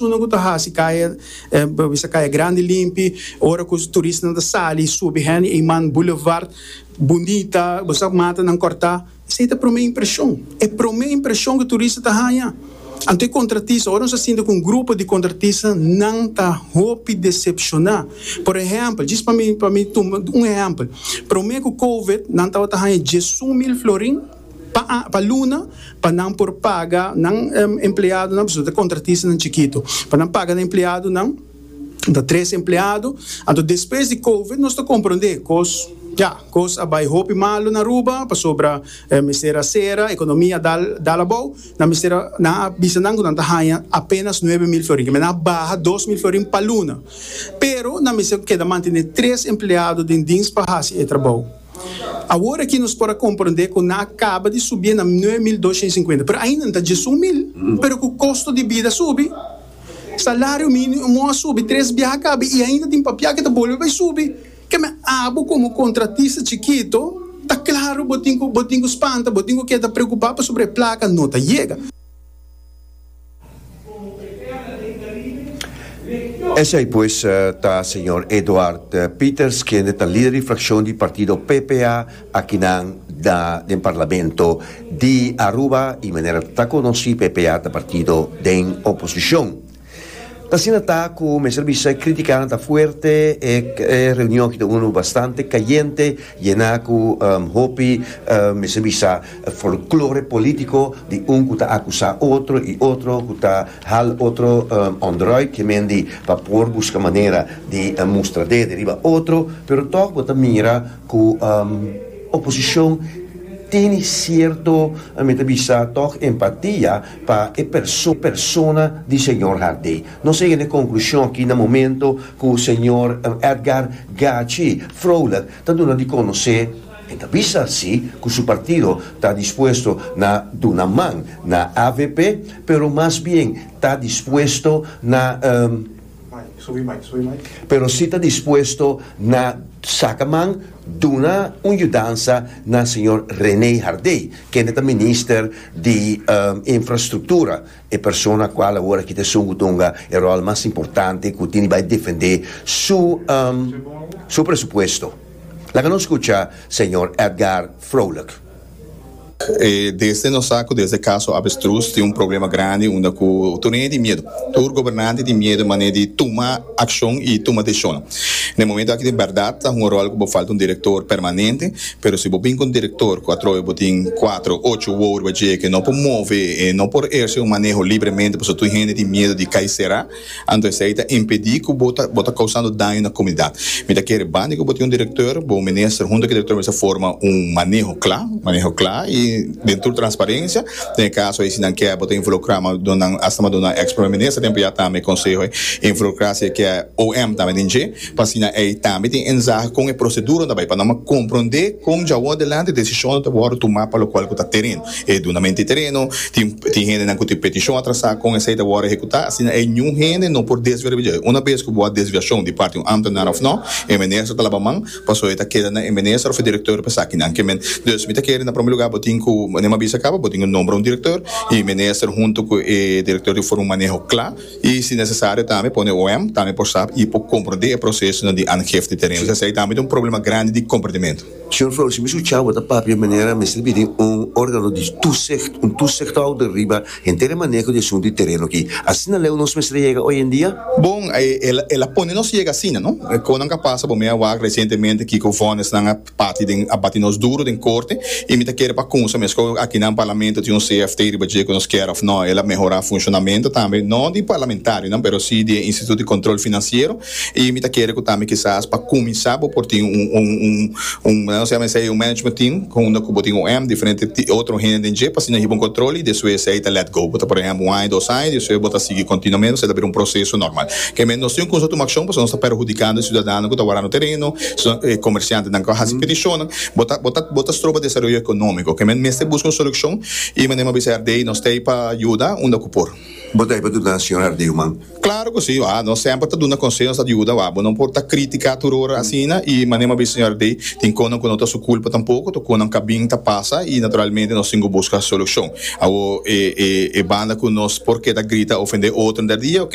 Uno ku ta hasi kaya bisa kaya grandi limpi ora ku turisnan ta sali i subi Henry Eman Boulevard bunita bo sa mata nan korta esei ta prome impreshon e prome impreshon ku turista ta haña anto e kontratista ora nos ta sinti ku un grupo di kontratista nan ta hopi desepshoná por ehèmpel djis pa mi pa mi tuma un ehèmpel prome ku covid nan tabata haña diesun mil florin. pa luna pa nan por paga nan empleadonan pasobra ta kontratistanan chikitu pa nan paga nan empleadonan ta tres empleado anto despues di covid nos ta komprondé kos ya kos a bai hopi malu na Aruba pasobra mester a sera ekonomi a dal abou nan mester a nan a bisa nan ku nan ta haña apenas nuebe mil florin kimin nan a baha dos mil florin pa luna pero nan mester keda mantené tres empleado den dins pa hasi e trabou. Awor aki nos por a komprondé ku nan a kaba di subié na nuebe mil doshiens sinkuenta, pero ainda nan ta djesun mil. Pero ku kosto di bida subi, salario mínimo a subi tres biaha a kaba i ainda tin papiá ku ta bolbe bai subi. Ke mi a abo komo kontratista chikitu, ta klaru bo tin ku spanta, bo tin ku keda preokupá pasobra e plaka no ta yega. Esei pues ta señor Eduard Pieters kende ta lider di frakshon di partido PPA akinan na den Parlamento di Aruba i manera ta konosí PPA ta partido den oposishon. Ta asina ta ku mester bisa e kritikanan ta fuerte, e reunion aki ta unu bastante kayente, yená ku hopi mester bisa E folklore polítiko di un ku ta akusá otro i otro ku ta hal otro òndròit, ke men di pa por buska manera di mustra dede riba otro, pero tòg bo ta mira ku oposishon tene sierto, mi ta bisa tòg, empatia pa e persona di señor Harté. Nos a yega e konklushon aki na momento ku señor Edgar Gachi, froulik, ta duna di konosé, E ta bisa si cu su partido ta dispuesto na duna man na avp, pero mas bien ta dispuesto na. Pero si ta dispuesto na saca man duna un yudansa na señor Rene Hardé, kende ta minister di Infrastructura, E persona a cual awor aki ta esun cu tunga e rol mas importante cu tin di bay defende su su presupuesto. Laga nos scucha Señor Edgar Vrolijk. Desde nos sa cu desde caso Avestruz tin un problema grandi unda cu tur ey tin miedo. Tur gobernante tin miedo mane di tuma. accion y tuma decision. Na e momento aki di berdad ta hunga rol cu bo falta un director permanente, pero si bo bin cu un director cu atrobe bo tin cuatro, ocho wou riba dje que no por move y no por eerce un maneho libremente pasobra tur hende tin miedo di cay cera, anto esey ta impedi cu bo ta bo ta causando daño na comunidad. Mi ta kere bandi cu bo tin un director, bo minister hunto cu e director mester forma un maneho cla, maneho cla y den tur transparencia. Den e kaso ei, si nan ke bo ta involukrá, ma do nan asta ma do nan èks Prome Minister tempu ya tambe, e konseho ei involukrá si e ke OM tambe den dje, pa asina ei tambe tin enzahe kon e proseduranan ta bai, pa nan m'a komprondé kon dja wòrdu adelante desishonnan ta wòrdu tumá pa lokual ku ta tereno, e dunamento di tereno, tin tin hendenan ku tin petishon atrasá, kon esei ta wòrdu ehekutá, asina ei niun hende no por desvia riba dje. Unabes ku bo a desviashon di parti un ámtenar òf nò, e Minister ta laba man, Paso e ta keda na e minister of e director pa esakinan ke men. Dus mi ta kere na prome luga bo tin ku manera mi a bisa kaba bo tin ku nombra un director i minister hunto ku e director tin ku forma un maneho kla i si nesesario tambe pone OM tambe por sa i por komprende e prosesonan di aangifte di teren. Esei tambe ta un problema grandi di komprendimento. Señor Flores, mi sucha bo ta papia manera mester bini un organo di tusicht, un tusichthouder riba Henter e maneho di asuntu di tereno aki. Asina leu nos mester a yega oye en dia? Bon, el a pone nos yega asina, no? Konan ka pasa, bo mi a wak resientemente kiko vonnisnan a parti den, a bati nos duru den korte, i mi ta kere pa kunsa meskos aki na Parlamento tin un CFT riba dje ku nos kier òf nò. El a mehorá funshonamentu tambe, no di parlamentarionan, pero sí di e Instituut di Kontrol Finansiero, Y mi ta kere cu tambe kisas pa cuminsa bo por tin un, un, un, un, nos llama esey un management team, unda cu bo tin un em, diferente ti, otro hende den dje, p'asina hiba un control y despues esey ta let go. Bo ta por ehemplo un aña, dos aña, despues bo ta sigui continuamente, esey ta bira un proceso normal. Kende nos tin cu nos tuma accion pasobra nos ta perhudicando e ciudadano cu ta warando tereno, e comerciantenan cu a haci peticionnan, bo ta, bo ta, bo ta stroba desaroyo economico. Kende mester busca un solucion y manera mi a bisa RD, nos t'ey pa yuda unda cu por. Bo ta ahí pa duna señor Hardieuman? Claro cu si, wah. Nos semper ta duna conseho, nos ta yuda, wah. Bo no por ta critica tur ora asina y manera bo a bisa señor Hardey, tin conan cu no ta su culpa tampoco, ta conan ca bin ta pasa y naturalmente nos tin cu busca solucion. Awor e banda cu nos por keda grita, ofende otro der dia, ok,